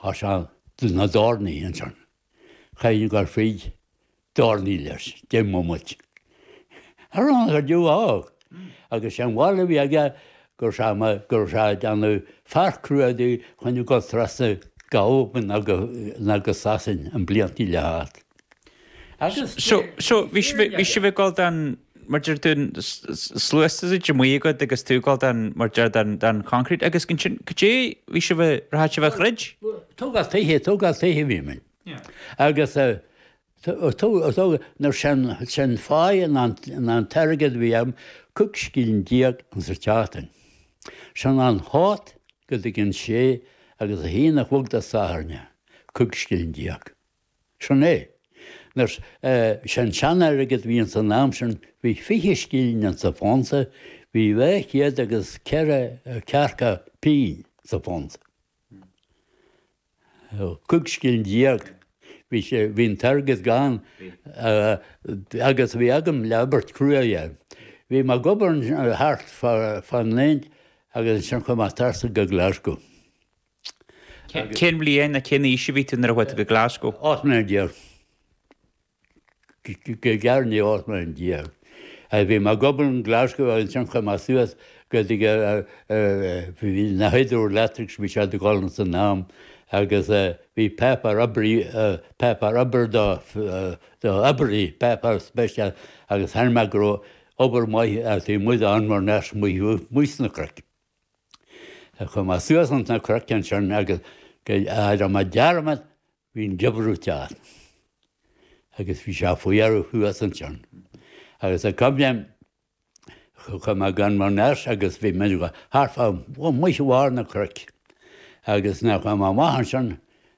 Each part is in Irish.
Tá sé do na dtairní ansan. Caithfidh an Gairfead dtairní leis, deich mbomaite. Ar fhána go deo ámh! Agus sé an bharúil a bhí aige go raibh sé mar go raibh sé ag déanamh fear cruaidh díom chun a ghabháil trasna go hAlbain agus Sasain sna blianta le theacht. Seo, bhí sibh ag dul don, mar a deir tú, sluasaid amuigh agat agus tú ag dul don, mar a deir, don choncrete agus ansin caidé bhí sibh a, rachaidh sibh a throid? Tógáil tithe, tógáil tithe a bhí muid agus an uair sin fáidh an an t-airgead a bhí ann, cúig scilling déag sa tseachtain. Sin óna hocht go dtí an sé agus a haon a chlog Dé Sathairn, cúig scilling déag. Sin é. An uair sin, Eh, bhí an sean-airgead a bhí ins an am sin, bhí fiche scilling ins an phunt, bhí dhá chéad agus ceithre ceathracha pingin sa phunt. Cúig scilling déag. Bhí sé, bhí an t-airgead gann agus bhí agam le obair crua a dhéanamh. Bhí mé ag obair thart fá bhliain agus ansin chuaigh mé trasna go Glasgow. Cén bhliain nó cén aois a bhí tú nuair a chuaigh tú go Glasgow? Ocht mbliana déag, go gearr i ndiaidh ocht mbliana déag, bhí mé ag obair in Glasgow agus ansin chuaigh mé suas go dtí na Hydroelectrics, bhí siad ag gabháil san am, agus bhí páipéar oibrí, páipéar obair do oibrí, páipéar speisialta, agus chonaic mé go raibh obair maith, taobh amuigh de Inverness amuigh sna cnoic. Ag cumadh suas ins na croiceann sin agus go deir mo dearmad bhí'n giobrúit as agus bhí sé faoi fhear thuas ansin agus ag coimléim chuir mé gan mo nurse agus bhí muid thart fá muise bharr na cruic agus nuair chuir mé amach ansin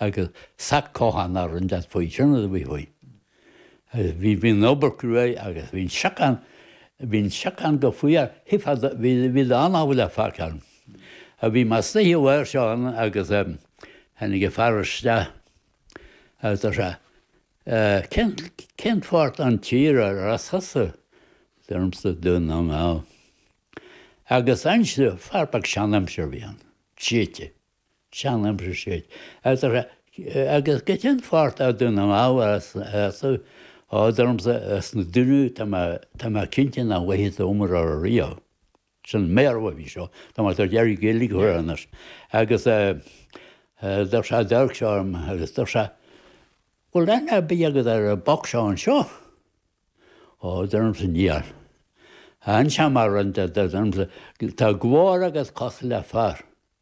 agus sac cocháin á roinnt as faoi sin agus a bhí faoi. Agus bhí bhí an obair cruaidh agus bhí an siocán bhí an siocán go faíar thig fad bhí bhí do an-tábhacht le fágtha ann. A bhí mar snoíche uair seo ann agus tháinig an fear isteach agus deir sé cén cén pháirt an tír ar as thusa? A deirimse Dún na nGall. Agus ansin fear beag seanaimseartha a bhí ann, Céití. Chan aimsir siad. Agus go cén pháirt a dúnann an ábhar as a fhad ormsa as na duine tá mé cinnte nach bhfaighidh tú umar ar a riail. Sin méar uaibh í seo. Tá mé tar deireadh Gaeilge a chur air anois. Agus d'fhag sé an dearg seo orm agus d'fhag sé Bhfuil aithne ar bith agat ar an bpoc seo anseo? Ó d'fhag ormsa níl. An seamair rince d'fhag ormsa tá glór agat cosúil le fear.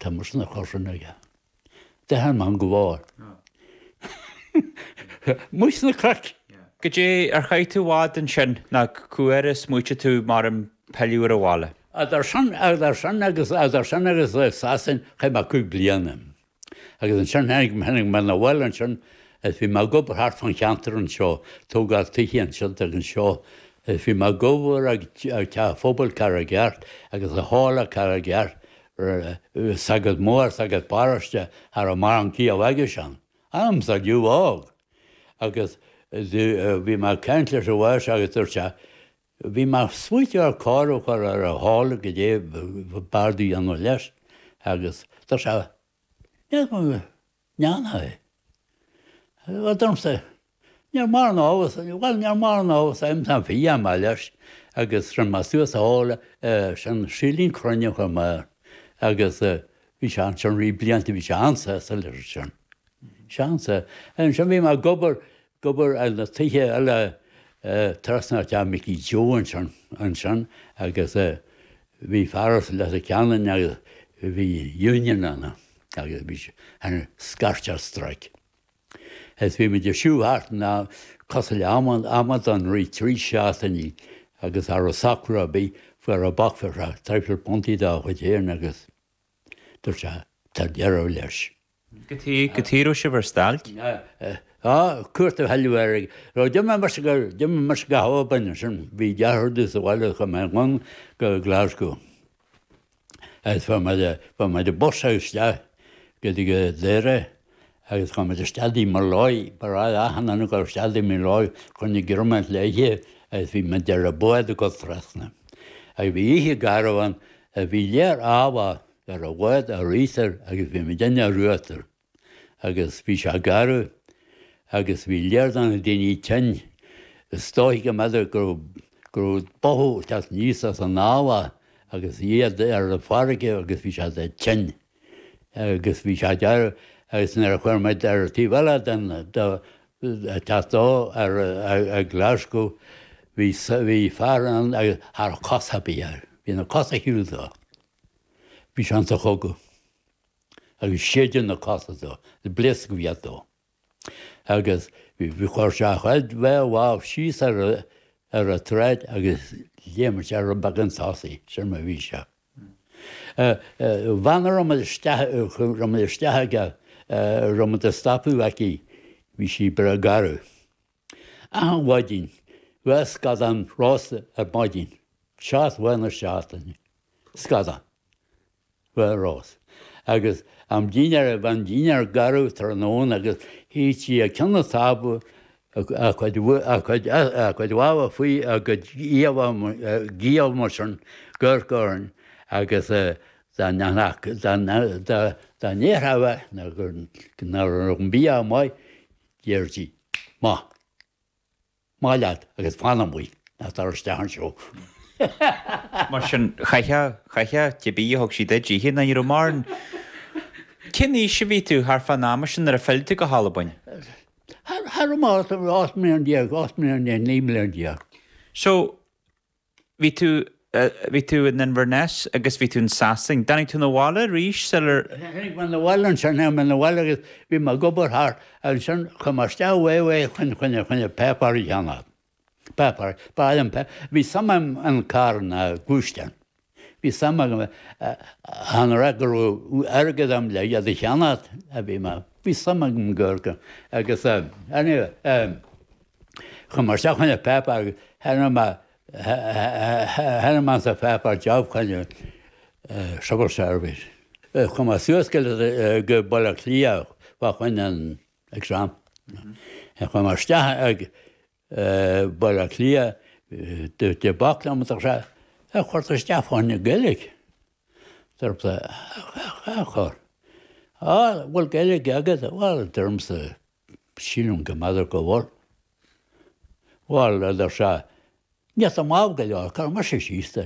Tá mé sna cosain aige. De tháim an gclár. Muid sna craic! Goidé ar chaith tú i bhfad ansin nó cá huair a smaoitigh tú ar pilleadh abhaile? Idir sin idir sin agus idir sin agus Sasain chaith mé cúig bliana. Agus ansin tháinig tháinig mé na bhaile ansin is bhí mé ag obair thart fan cheantar anseo, tógáil tithe ansin agus anseo Is bhí mé ag obair ag Teach Phobail Charraig Airt agus i Halla Charraig Airt sagart mór sagart paróiste thar an marng ciabh aigesean. Am sa liú ág! Agus bhí mé ag caint leis an bhfear seo agus dúirt sé, bhí mé ag smaoiteamh ar cóir a chur ar an halla goidé ab fhearr domh a dhéanamh leis agus dúirt sé, Ndéanfaidh. Bhuel, domsa, níor mhar an ábhar, bhuel, níor mhar an ábhar sa im sam fi am a leis agus sin mar suas a fháil sin silín crainn chomh maith agus bhí sé ansin bhí blianta bhí sé an-sásta leis sin. Seansa. Ansin bhí mé ag obair Ag obair ar na tithe eile trasna ó theach Mickey Joe ansin agus bhí fear as Leitir Ceanainn agus bhí union ann agus bhí sé ag scairtigh strike. Is bhí muid ag siúl thart ann cosúil le amadáin i rith trí seachtainí agus nuair a socraíodh é fuair sé back pay thart ar £30 dá chuid féin agus Dúirt sé, Tá deireadh leis. Go dtí raibh sibh ar stailc? Tá, cuairt a thuilleadh air. D'imigh mé mar sin go, d'imigh mé mar sin go hAlbain ansin. Bhí deartháir domh sa bhaile chuaigh mé anonn go Glasgow. Agus fuair mé, fuair mé bus isteach go dtí Doire Agus chuaigh muid isteach tigh Molloy, ba ghnách le achan duine a ghabháil isteach tigh Molloy fá choinne greim le hithe agus bhí muid ar an bhád ag dul trasna. Agus bhí oíche garbh ann agus bhí léar eallaigh ar an bhád ar íochtar agus bhí muidinne ar uachtar. Agus bhí sé garbh agus bhí léar de na daoine tinn. Is dóigh go mb'fhéidir go raibh, go raibh boladh ag teacht aníos as an eallach agus iad ar an fharraige agus bhí siad tinn. agus bhí sé garbh agus nuair a chuaigh muid ar an taobh eile den teach dó i nGlaschú bhí bhí fear ann agus cha raibh cosa ar bith air bhí na cosa ar shiúl dó bhí sé ins an chogadh agus séideadh na cosa dó pléascadh a bhí dó. agus chuir sé a chuid dhá lámh síos ar an tsráid agus léim sé rud beagán chun tosaigh, sin mar a bhí sé. Bhean a raibh muid isteach, raibh muid isteach aici, raibh muid ag stopadh aici, bhí sí breá garbh. Achan mhaidin, dhá scadán rósta ar maidin, seacht lá na seachtaine, scadán. Bhuel, Ros. Agus am dinnéir ag am dinnéir gairid tráthnóna agus shuigh sí ag ceann an tábla, a cuid lámha faoi a cuid, faoina giall mar sin, ag amharc orainn, agus dá ndéarfadh a mhac nach raibh an bia maith, déarfadh sí, Amach. Amach leat agus fan amuigh, ná tar isteach anseo. Mar sin, chaithfeá, chaithfeá cibé a thug sí duit a ithe ná ní raibh mórán. Cén aois a bhí tú thart fán am sin nuair a phill tú go hAlbain? Thart, thart ar, ocht mbliana déag, ocht mbliana déag, naoi mbliana déag. So, Bhí tú, bhí tú in Inverness agus bhí tú in Sasain. Dtáinig tú na bhaile arís sular. Tháinig mé na bhaile ansin, tháinig mé na bhaile agus bhí mé ag obair thart ansin, chuaigh mé isteach fá, fá choinne, choinne, choinne an páipéar a cheannach. Páipéar, fáil an páipéar, bhí suim agam in carranna, gluaisteáin. Bhí suim agam, chan rud go raibh airgead agam le iad a cheannach ach bhí mé, bhí suim agam go, go, agus anyway, Chuaigh mé isteach fá choinne páipéar, chonaic mé ar an pháipéar job fá choinne Civil Service. Chuaigh mé suas go Baile Átha Cliath fá choinne an exam. Chuaigh mé isteach go Baile Átha Cliath de bác diomadach sé ar chuir tú isteach fá choinne Gaeilge. Deirtear, Á, bhfuil Gaeilge agat? Bhuel, deirimse, Sílim go mb'fhéidir go bhfuil. Bhal, a deir sé, má tá, maith go leor, cuirfidh mise síos tú.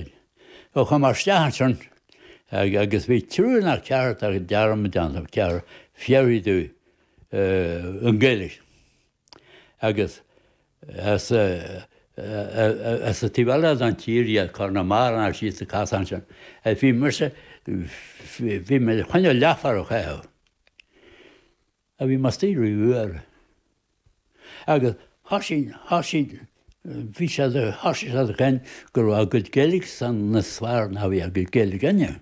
Ó chuaigh mé isteach ansin agus bhí triúr ná ceathrar tá dearmad déanta agam, ceathrar fir idir an gCoillidh agus as an taobh eile den tír, iad Conamara ná síos ag casadh ansin. Bhí mise, bhí mé ag coinneáil leathfhear a chaitheamh. a bhí máistir uair agus thoisigh thoisigh bhí sé de thoisigh sé de chaint go raibh a gcuid Gaeilgesan níos fearr ná a bhí a gcuid Gaeilge inniu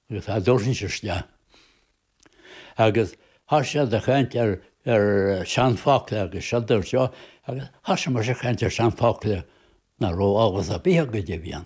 agus a dtabharfaidh sé isteach agus thoisigh sé de chaint ar ar seanfhocla agus seo dúirt seo agus thoisigh muid a chaint ar seanfhocla nach raibh eolas ar bith acu a bhí ann.